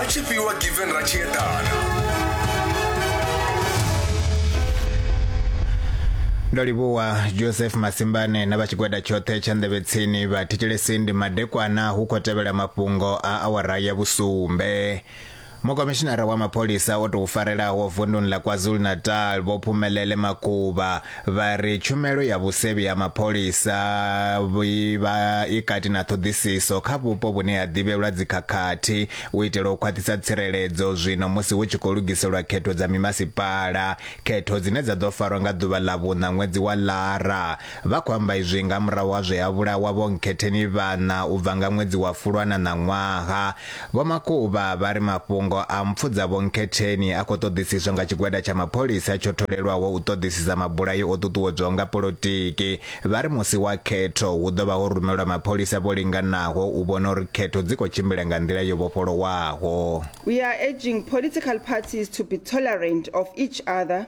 a tshi fhiwa given ra tshi eḓana ndo livhuwa joseph masimbane na vha tshigwada tshoṱhe tsha nḓevhetsini vha thetshelesi ndi madekwana hu khou tevhela mafhungo a awara ya vhusumbe mukomishinara wa mapholisa o tou farelaho vunduni ḽa kwazulu-natal vho phumelele makuba vha ri tshumelo ya vhusevhi ha mapholisa i vha i kati na ṱhoḓisiso kha vhupo vhune ha ḓivhelwa dzikhakhathi u itela u khwaṱhisa tsireledzo zwino musi hu tshi khou lugiselwa khetho dza mimasipala, khetho dzine dza ḓo farwa nga ḓuvha ḽa vhuṋa ṅwedzi wa Lara. Vha khou amba izwi nga murahu ha zwe ha vhulawa Vho Nkhetheni Vhana u bva nga ṅwedzi wa Fulwana ṋaṅwaha Vho Makuba vha ri mafhungo a mpfu dza Vho Nkhetheni a khou ṱoḓisiswa nga tshigwada tsha mapholisa tsho tholelwaho u ṱoḓisisa mabulayo o ṱuṱuwedzwaho nga polotiki. Vha ri musi wa khetho hu ḓo vha ho rumelwa mapholisa vho linganaho u vhona uri khetho dzi khou tshimbila nga nḓila yo vhofholowaho. We are urging political parties to be tolerant of each other.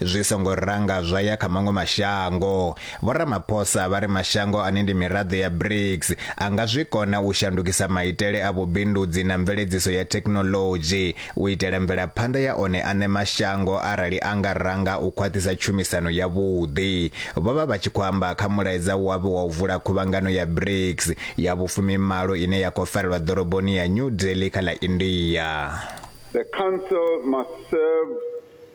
zwi songo ranga zwa ya kha maṅwe mashango. Vho Ramaphosa vha ri mashango ane ndi miraḓo ya BRICS a nga zwi kona u shandukisa maitele a vhubindudzi na mveledziso ya thekhinoḽodzhi u itela mvelaphanḓa ya one aṋe mashango arali a nga ranga u khwaṱhisa tshumisano yavhuḓi. Vho vha vha tshi khou amba kha mulaedza wavho wa u vula khuvhangano ya BRICS ya vhufumimalo ine ya khou farelwa ḓoroboni ya New Delhi kha ḽa India. The Council must serve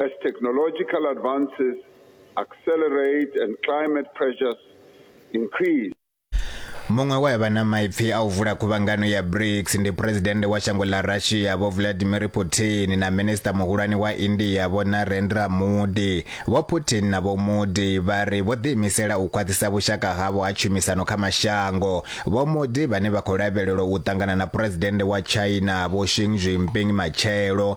As technological advances accelerate and climate pressures increase, Muṅwe we a vha na maipfi a u vula khuvhangano ya BRICS ndi phuresidennde wa shango ḽa Russia Vho Vladimir Putin na minisiṱa muhulwane wa India Vho Narendra Modi. Vho Putin na Vho Modi vha ri vho ḓiimisela u khwaṱhisa vhushaka havho ha tshumisano kha mashango. Vho Modi vhane vha khou lavhelelwa u ṱangana na phuresidennde wa China Vho Xi Jinping matshelo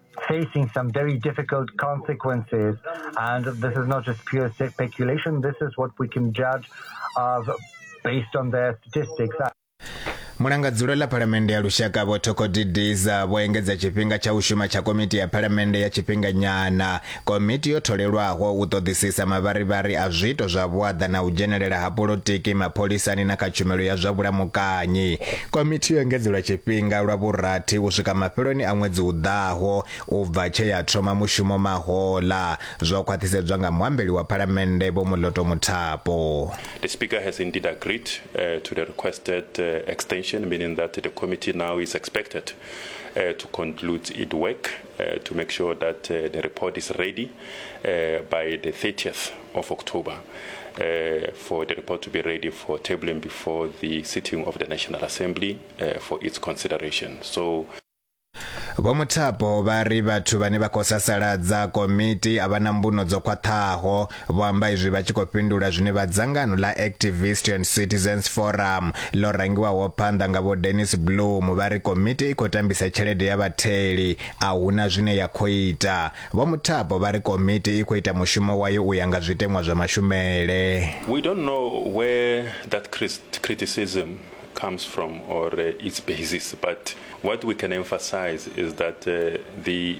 facing some very difficult consequences. This is not just pure speculation, this is what we can judge of based on their statistics. mulangadzulo ḽa phalamennde ya lushaka vho thokodidiza vho engedza tshifhinga tsha u shuma tsha komiti ya phalamennde ya tshifhinganyana Komiti yo tholelwaho u ṱoḓisisa mavharivhari a zwiito zwa vhuaḓa na u dzhenelela ha polotiki mapholisani na kha tshumelo ya zwa vhulamukanyi. Komiti yo engedzelwa tshifhinga lwa vhurathi u swika mafheloni a ṅwedzi u ḓaho u bva tshe ya thoma mushumo mahoḽa, zwo khwaṱhisedzwa nga muambeli wa Phalamennde Vho Moloto Muthapo. The Speaker has indeed agreed uh, to the requested uh, extension, meaning that the committee now is expected uh, to conclude its work Uh, to make sure that uh, the report is ready uh, by the 30th of October uh, for the report to be ready for tabling before the sitting of the National Assembly uh, for its consideration. So vho muthapo vha ri vhathu vhane vha khou sasaladza komiti a vha na mbuno dzo khwaṱhaho Vho amba izwi vha tshi khou fhindula zwine vha dzangano ḽa Activist and Citizens Forum ḽo rangiwaho phanḓa nga vho Dennis Bloom vha ri komiti i khou tambisa tshelede ya vhatheli a huna zwine ya khou ita. Vho Muthapo vha ri komiti i khou ita mushumo wayo u ya nga zwiteṅwa zwa mashumele. We don't know where that criticism comes from or uh, its basis, but what we can emphasize is that uh, the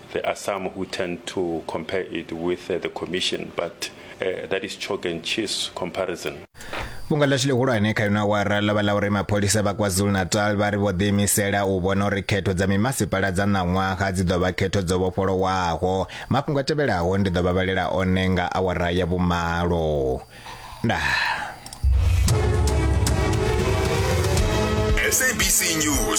There are some who tend to compare it with uh, the commission, but uh, that is chalk and cheese comparison. fhungo ḽashu ḽihulwane kha ino awara ḽo vha ḽa uri mapholisa vha kwazulu-natal vha ri vho ḓiimisela u vhona uri khetho dza mimasipala dza ṋaṅwaha dzi ḓo vha khetho dzo vhofholowaho mafhungo a tevhelaho ndi ḓo vha vhalela one nga awara ya vhumalo ndaa